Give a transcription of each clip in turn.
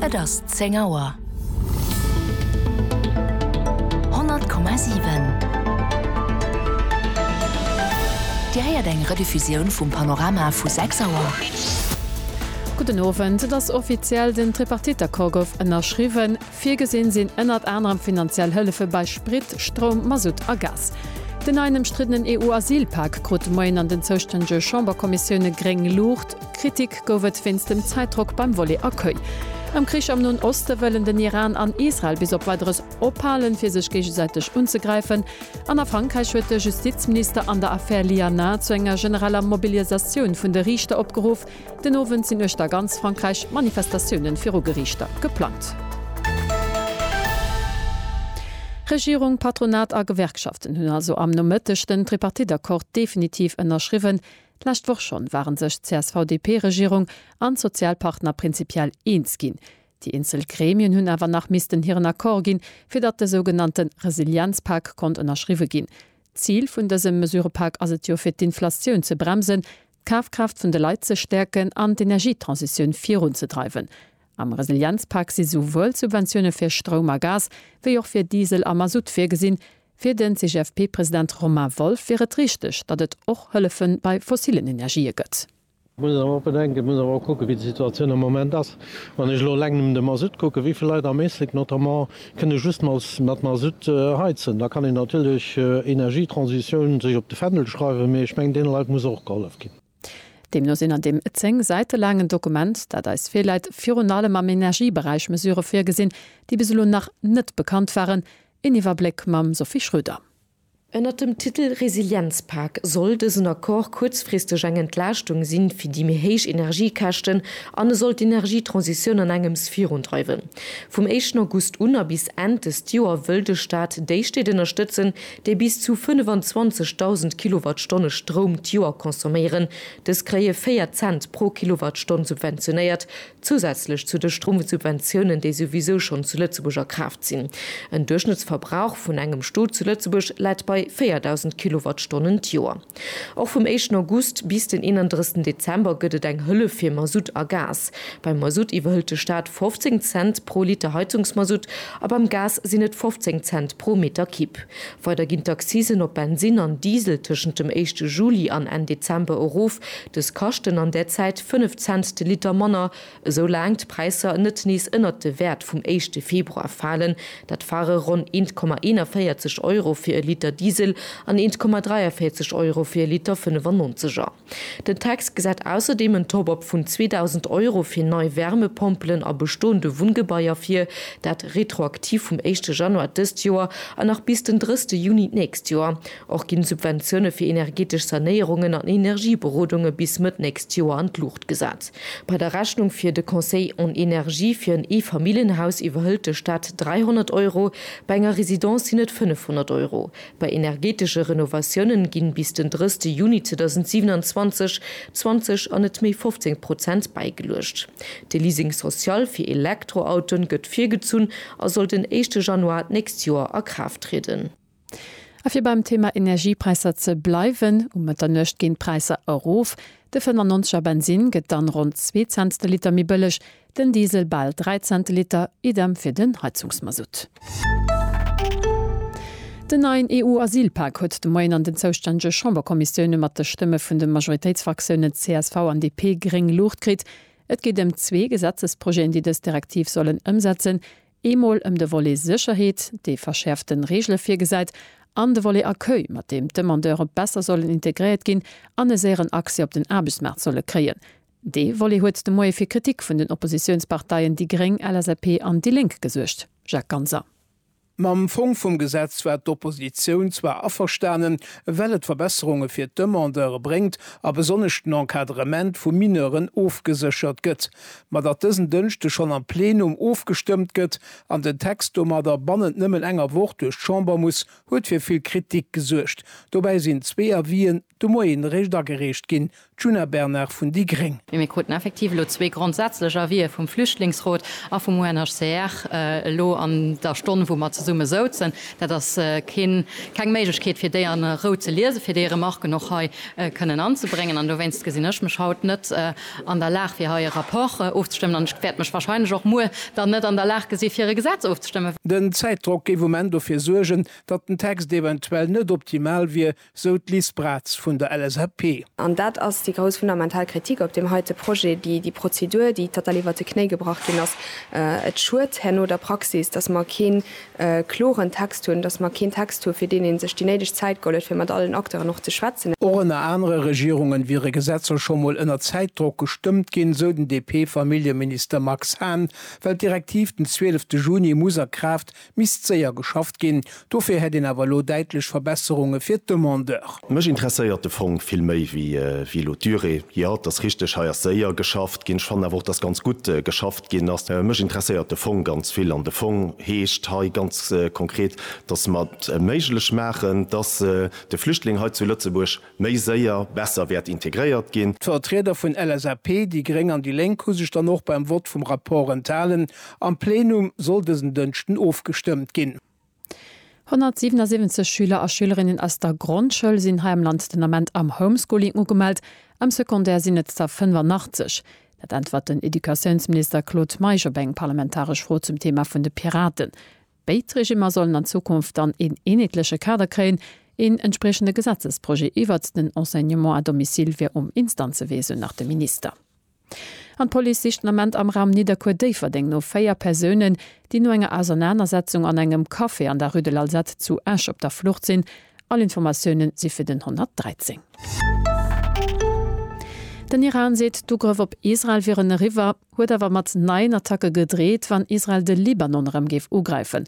Et ass zéng Auer. 100,7 Dir héiert eng Rediffusioun vum Panorama vu sechs Auer. Gudden Owend. Et ass offiziell, Den Tripartite-Accord gouf ënnerschriwwen. Virgesinn sinn ënnert anerem finanziell Hëllefe bei Sprit, Stroum, Masutt a Gas. Den neien ëmstriddenen EU-Asylpak krut de Moien an den zoustännege Chamberkommissioune gréng Luucht. Kritik gouf et wéinst dem Zäitdrock beim Volley Accueil. Am Krich am Noen Oste wëllen den Iran an Israel bis op Weideres ophalen, fir sech géigesäiteg unzegräifen. An a Frankräich huet de Justizminister an der Affär Liana zu enger genereller Mobilisatioun vun de Riichter opgeruff. Den Owend sinn uechter ganz Frankräich Manifestatioune viru Geriichter geplangt. Regierung, Patronat a Gewerkschaften hunn also am Nomëtteg den Tripartite-Accord definitiv ënnerschriwwen. D'lescht Woch schonn waren sech d'CSV-DP-Regierung an d'Sozialpartner prinzipiell eens ginn. Déi eenzel Gremien hunn awer nach missten hiren Accord ginn, fir datt de sougenannte Resilienzpak konnt ënnerschriwwe ginn. D'Zil vun dësem Mesurepak ass et jo, fir d'Inflatioun ze bremsen, d'Kafkraaft vun de Leit ze stäerken an d'Energietransitioun virunzedreiwen. Am Resilienzpak si souwuel Subventioune fir Stroum a Gas wéi och fir Diesel a Masutt virgesinn, Fir den CGFP-President Romain Wolff wier et richteg, datt et och Hëllefe bei fossillen Energië gëtt. Et muss een awer och bedenken, et muss een awer och kucken, wéi déi Situatioun am Moment ass. Wann ech elo eleng nëmmen de Masutt kucken, wéi vill Leit am Éislek notamment kënne just mat Masutt heizen, da kann een natierlech Energietransitioun sech op de Fändel schreiwen, mee ech mengen, deene Leit muss och gehollef ginn. Deemno sinn an deem zéng Säite laangen Dokument, dat eis virläit, virun allem am Energieberäich Mesurë virgesinn, déi bis elo nach net bekannt waren. Een Iwwerbléck mam Sophie Schröder. Ënnert dem Titel Resilienzpak soll dësen Accord kuerzfristeg eng Entlaaschtung si fir déi méi héich Energiekäschten an e soll d'Energietransitioun an engems virundreiwen. Vum éischten August un a bis Enn dëst Joer wëll de Staat déi Stied ënnerstëtzen, déi bis zu 25.000 Kilowattstonne Stroum d'Joer consomméieren, dës kréie 4 Cent pro Kilowattstonn subventionéiert, zousätzlech zu de Stromsubventiounen, déi souwisou schonn zu Lëtzebuerg a Kraaft sinn. En Duerchschnëttsverbrauch vun engem Stot zu Lëtzebuerg läit bei 4.000 Kilowattstonnen d'Joer. Och vum éischten August bis den 31 Dezember gëtt et eng Hëllef fir Masutt a Gas. Beim Masutt iwwerhëlt de Staat 15 Cent pro Liter Heizungsmasutt a beim Gas sinn et 15 Cent pro Meter Kib. Weider ginn d'Accisen op Bensinn an Diesel tëschent dem éischte Juli an Enn Dezember erof. Dës kaschten an där Zäit 5 Cent de Liter manner. Esou laang d'Präisser net nees ënnert de Wäert vum éischte Februar falen, dat ware ronn 1,41 Euro fir e Liter Diesel an 1,43 Euro fir e Liter 95 er. Den Text gesäit ausserdeem en Top-Up vun 2.000 Euro fir nei Wärmepompelen a bestoende Wunngebaier vir, dat retroaktiv vum éischte Januar dëst Joer an nach bis den drësste Juni d'nächst Joer. Och ginn d'Subventioune fir energetesch Sanéierungen an Energieberodunge bis Mëtt nächst Joer an d'Luucht gesat. Bei der Rechnung fir de Conseil en énergie fir en Eefamilljenhaus iwwerhëlt de Staat 300 Euro, bei enger Residence sinn et 500 Euro. Bei energetesche Renovatiounen ginn bis den 30 Juni 2027 20 an net méi 15 Prozent bäigeluecht. De Leasing social fir Elektroautoen gëtt virgezunn a soll den éischte Januar d'nächst Joer a Kraaft trieden. A fir beim Thema Energiepräisser ze bleiwen, Um Mëtternuecht ginn d'Präisser erof, de 95 er Bensinn gëtt dann ronn zwee Cents de Liter méi bëlleg, den Diesel bal dräi Cent de Liter, idem fir den Heizungsmasutt. Den neien EU-Asylpak huet de Moien an den zoustännege Chamberkommissioune mat de Stëmme vun de Majoritéitsfraktiounen csv an DP gréng Luucht kritt. Et geet ëm zwee Gesetzesprojeten, déi dës Direktiv sollen ëmsetzen, Eemol ëm de Volet Sécherheet, dee verschäerfte Reegele virgesäit, an de Volet Accueil, mat deem d'Demandeure besser sollen integréiert ginn an e séieren Accès op den Aarbechtsmaart solle kréien. Dee Volet huet de Moie fir Kritik vun den Oppositiounsparteien déi gréng, LSAP an déi Lénk gesuergt, Jacques Ganser. Mam Fong vum Gesetz war d'Oppositioun zwar averstanen, well et Verbesserunge fir d'Demandeure bréngt a besonnesch den Encadrement vu Mineuren ofgeséchert gëtt. ma datt dësen Dënschde schonn am Plenum ofgestëmmt gëtt an den Text domadder bannent nëmmen enger Woch duerch d'Chamber muss, huet fir vill Kritik gesuergt. Dobäi sinn zwee Avisen de Moien eréischt agereecht ginn. D'Djuna Bernard vun déi gréng. Mee mir kruten effektiv elo zwee grondsätzlech Avisë vum Flüchtlingsrot a vum UNHCR elo an der Stonn, wou mer zesumme souzen. Dat ass keen, keng Méiglechkeet, fir déi a Rou ze liesen, fir déi Remarken och hei kënnen anzebréngen. An dowéinst gesinn ech mech haut net an der Lag, fir hei e Rapport ofzestëmmen, an ech wäert mech wahrscheinlech och muer dann net an der Lag gesi fir e Gesetz ofzestëmmen. Den Zäitdrock géif um Enn dofir suergen, datt den Text eventuell net optimal wier, sou d'Liz Braz vun der LSAP. An dat ass déi grouss fundamental Kritik op deem heite Projet, déi Prozedur, déi total iwwert de Knéi gebrach ginn ass. Et schued herno der Praxis, datt mer kee e kloren Text hunn, dass mer keen Text hu fir deen ee sech déi néideg Zäit geholl huet, fir mat allen Acteuren och ze schwätzen. Och ënner anere Regierunge wiere Gesetzer scho mol ënner Zäitdrock gestëmmt ginn, sou den DP-Familljeminister Max Hahn. Well d'Direktiv den zwielefte Juni muss a Kraaft, misst séier geschafft ginn. Dofir hätt een awer elo däitlech Verbesserunge fir d'Demandeur. Mech interesséiert de Fong vill méi wéi elo d'Durée. Jo, et ass richteg, hei ass séier geschafft ginn. Ech fannen awer och, dass ganz gutt geschafft ginn ass. Mech interesséiert de Fong ganz vill an de Fong heescht hei ganz konkret, dass mer et méiglech maachen, dass de Flüchtling hei zu Lëtzebuerg méi séier, besser wäert integréiert ginn. D'Vertrieder vun LSAP, déi gréng an déi lénk hu sech dann och beim Vott vum Rapport enthalen. Am Plenum soll dësen Dënschden ofgestëmmt ginn. 177 Schüler a Schülerinnen aus der Grondschoul sinn hei am Land den Ament am Homeschooling ugemellt, am Secondaire sinn et der 85. Dat äntwert den Educatiounsminister Claude Meisch op eng parlamentaresch Fro zum Thema vun de Piraten. Béid Regimmer sollen an Zukunft dann een eenheetleche Kader kréien. Een entspriechende Gesetzesprojet iwwert den Enseignement à domicile wier um Instanzewee, sou nach de Minister. An d'Police sicht den Ament am Raum Nidderkuer-Déifferdeng no véier Persounen, déi no enger Ausernanersetzung an engem Café an der Rue de l'Alzate zu Esch op der Flucht sinn. All Informatioune si fir den 113. Den Iran seet, d'Ugrëff op Israel wieren eriwwer, huet awer mat neien Attacke gedreet, wann Israel de Libanon erëm géif ugräifen.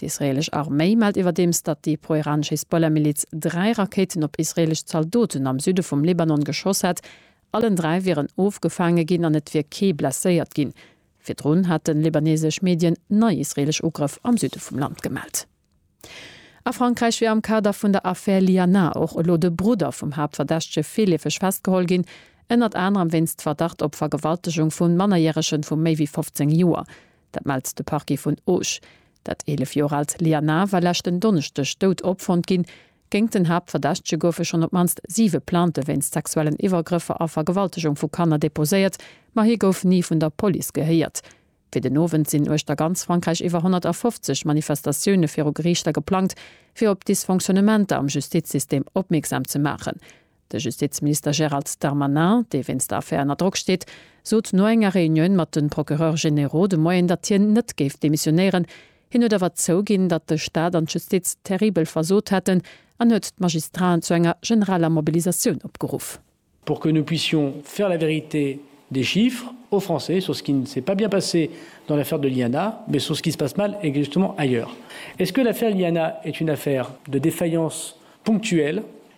D'israeelesch Arméi mellt iwwerdeems, datt déi pro-iranesch Hisbollah-Miliz dräi Rakéiten op israeelesch Zaldoten am Süde vum Libanon geschoss hätt. Allen dräi wieren ofgefaange ginn an et wier kee blesséiert ginn. Virdrun hate libaneesesch Medien nei israeelesch Ugrëff am Süde vum Land gemellt. A Frankräich wier am Kader vun der Affär Liana och elo de Brudder vum Haaptverdächtege virleefeg festgeholl ginn, ënnert anerem wéinst Verdacht op Vergewaltegung vu Mannerjärege vu méi wéi 15 Joer. Dat mellt de Parquet vun Auch. Dat 11 Joer aalt Liana war leschten Donneschdeg dout opfonnt ginn. Géingt den Haaptverdächtege goufe schonn op d'mannst siwe Plainte wéinst sexuellen Iwwergrëffer a Vergewaltegung vu Kanner deposéiert, ma hie gouf ni vun der Police gehéiert. Fir den Owend sinn uechter ganz Frankräich iwwer 150 Manifestatioune viru Geriichter geplangt, fir op d'Dysfonctionnementer am Justizsystem opmierksam ze maachen. De Justizminister Gérald Darmanin, dee wéinst der Affär ënner Drock steet, sot no enger Reunioun mat de Procureurs généraux de Moien, datt hien net géif demissionéieren. Hien huet awer zouginn, datt de Staat an d'Justiz terribel versot hätten an huet d'Magistraten zu enger generaler Mobilisatioun opgeruff. Pour que nous puissions faire la vérité des chiffres aux Français sur ce qui ne s'est pas bien passé dans l'affaire de l'INA, mais sur ce qui se passe mal exactement ailleurs. Est-ce que l'affaire INA est une affaire de défaillance ponctuelle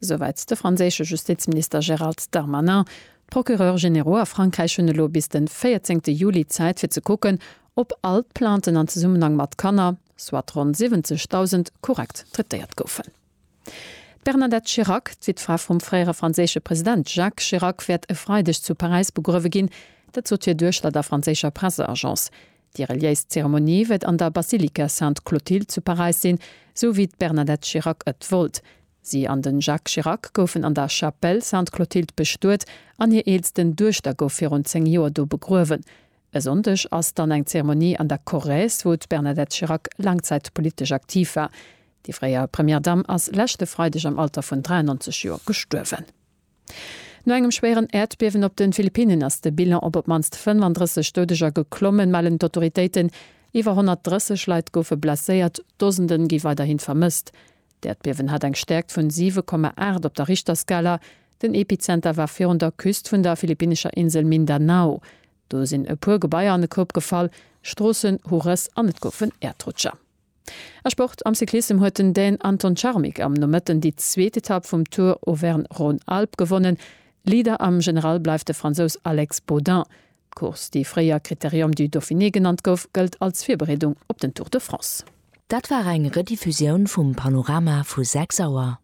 Esouwäit de franséische Justizminister Gérald Darmanin. D'Procureurs généraux a Frankräich hunn elo bis den 14 Juli Zäit fir ze kucken, ob all d'Plainten an Zesummenhang mat Kanner, soit ronn 70.000, korrekt traitéiert goufen. D'Bernadette Chirac, d'Wittfra vum fréiere franséische President Jacques Chirac, wäert e Freideg zu Paräis begruewe ginn. Dat sot hir Duechter der franséischer Presseagence. Déi reliéis Zeremonie wëtt an der Basilika Sainte Clotilde zu Paräis sinn, sou wéi d'Bernadette Chirac ët wollt. Si an den Jacques Chirac goufen an der Chapelle Sainte Clotilde bestuet an hir eelsten Duechter gouf virun 10 Joer do begruewen. E Sonndeg ass dann eng Zeremonie an der Corrèze, wou d'Bernadette Chirac laang Zäit politesch aktiv war. Déi fréier Première Dame ass leschte Freideg am Alter vun 93 Joer gestuerwen. No engem schwéieren Äerdbiewen op de Philippinnen ass de Bilan op op d'mannst 35 Doudeger geklommen, mellen d'Autoritéiten. Iwwer 130 Leit goufe blesséiert, Dosende gi weiderhi vermësst. D'Äerdbiewen hat eng Stäerkt vun 7,8 op der Richterskala. Den Epizenter war virun der Küst vun der philippinnescher Insel Mindanao. Do sinn e puer Gebaier an e Koup gefall, Stroossen hu Rëss an et goufen Äerdrutscher. A Sport, Am Cyclissem huet den Dän Anton Charmik am Nomëtten déi zweet Etapp vum Tour Auvergne-Rhône-Alpes gewonnen. Leader am General bleift de Fransous Alex Baudin. D'Course, déi fréier Critérium du Dauphiné genannt gouf, gëllt als Virbereedung op den Tour de France. Dat war eng Rediffusioun vum Panorama vu 6 Auer.